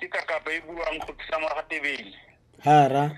ke kakapa e buang go tlisa ngwaga tebele hara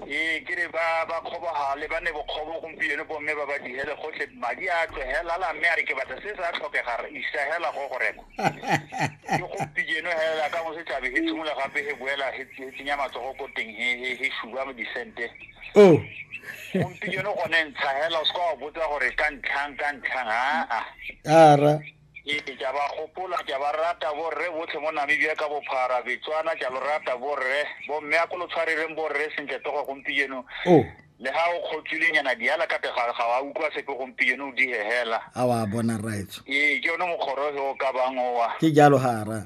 ee ke re ba ba kgobogale ba ne bokgobo gompieno bomme ba ba digele gotlhe madi a tlogela la mme a re ke batla se sa tlhokega re isa hela go go reka ke gompieno hela ka mo se tlabe he tshimola gape he boela he tsenya matsogo ko teng he he he shuba mo disente oh gompieno gone ntsha hela o se ka wa botsa gore ka ntlhang ka ntlhang aa ara Ee, ke a ba gopola ke a ba rata borre botlhe mo namibia ka bophara betswana ke a lo rata borre bomme a ko lo tshwarereng borre sentle togo gompieno oh. le ga o kgotswilenyana diala ka tega ga wa utlwa sepe gompieno o dihehela a wa bona right ee ke yone mokgoroge o ka bang owa ke jalo ga ra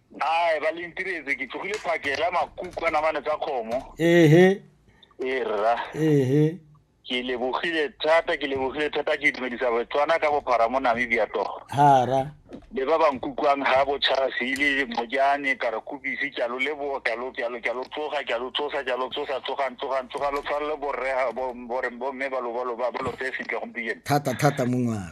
Ae, ba le ntiretse ke tlogile phakela makuku a namane tsa kgomo. Ehe. E rra. Ehe. Ke lebogile thata, ke lebogile thata ke dumedisa Botswana ka bophara mo Namibia togo. Hara. Le ba ba nkukwang ha bochasi le mojane ka re kubisi ke a lo leboga ke a lo ke a lo ke a lo tsoga ke a lo tsosa ke a lo tsosa tsogang tsogang tsoga lo tshware le borre ha- bo- borre bomme ba lo ba lo ba ba lo tseye sentle gompieno Thata thata mongwana.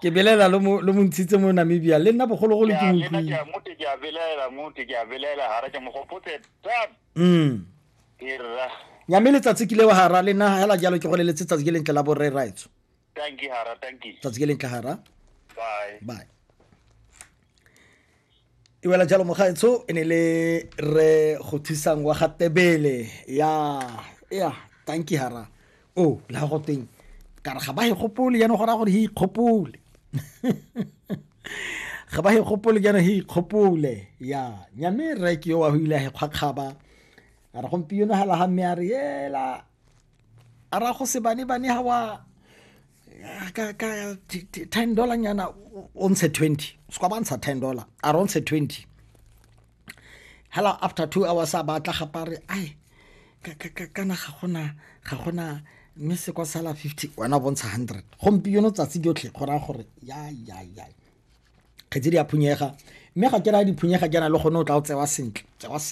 ke belaela lo mo ntshitse mo namibia le nna bogologolo ke motlile ke a belaela mote ke a belaela gara ke mogopotse tap mm irra nyame letsatsi ke lewa gara le nna hela jalo ke go le letsatsi ke lentle la borre raitso thank you hara thank you tsatsi ke lentle hara bye bye e wela jalo mogaetsho e ne le re go thusang wa ga tebele ya ya tanki hara o oh, la go teng ka re ga ba e gopole yana go raya gore he ikgopole ga ba e gopole yana he ikgopole ya nyame reke yo wa go ile a e kgwakgaba a re gompieno ga laga mme a re ela a ra go sebanebane ga wa ka ka ten dollar nyana o ntshe twenty se kwa ba ntsha ten dollar a re o ntshe twenty hala after two hours a batla gapa re ai kana ga gona ga gona mme se kwa sala fifty wena o bontsha hundred gompieno tsatsi jotlhe go raya gore ya ya ya kgetse di a phunyega mme ga ke raya diphunyega ke na le gone o tla o tsewa sentle tsewa sentle